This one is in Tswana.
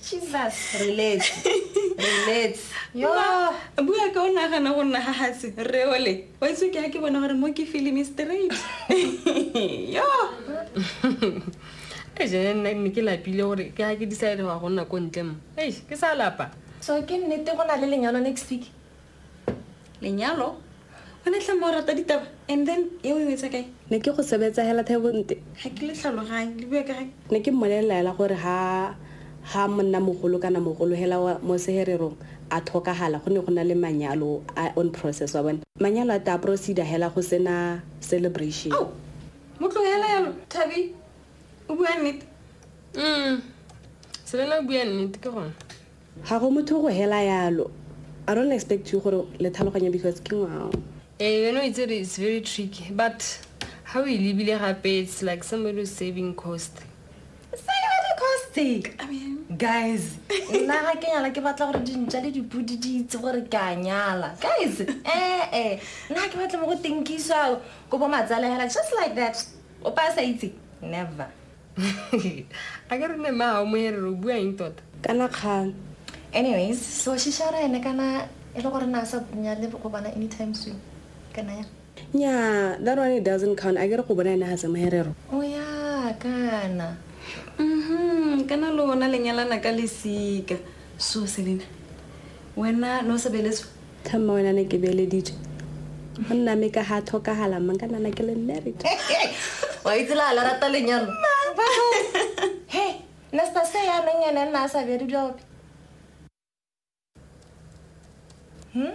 Jesus relates relates yo bua ka o nagana go nna ga gase re ole wa itse ke ke bona gore mo ke film straight yo e jene nna ne ke lapile gore ke ga ke decide ga go nna ko ntle mo ei ke sa lapa so ke nnete go na le lenyalo next week lenyalo o ne tlhama o rata ditaba and then e o e wetsa kae ne ke go sebetsa hela thebonte ga ke le tlhaloganye le bua ka gae ne ke mmolelelaela gore ha ha monna mogolo kana mogolo hela mo sehererong a tlhokagala go ne go na le manyalo a on process wa bone manyalo a ta procedure hela go sena celebration oh, mo tlogela yalo thabi o bua nnete mm selela o bua nnete ke gone Ga go motho go hela yalo. I don't expect you gore le tlhaloganye because ke ngwao. Eh yone o itse re it's very tricky but ha o e lebile gape it's like somebody who's saving cost. Saving cost. I mean guys nna ga ke nyala ke batla gore dintša le dipodi di itse gore ke a nyala guys ee eh, nna ke batla mo go tinkiswa ko bo matsalehela just like that o pa sa itse never a ke re ne maa o moerere o bua eng tota kana kgang anyways so shishara ene kana e le gore na sa bunya le go bona anytime soon kana ya nya that one it doesn't count a ke re go bona ene ga se moerero o oh, ya kana mhm kana lona lenyalana ka lesika so selena wena no sebeletswe Tha mma wena ne ke beeleditswe. Go nna me ka ga tlhokagala mma nka nana ke le married. Wa itse la la rata lenyalo. He, nna se se ya neng ene nna a sa bere dilo ope. Hmm?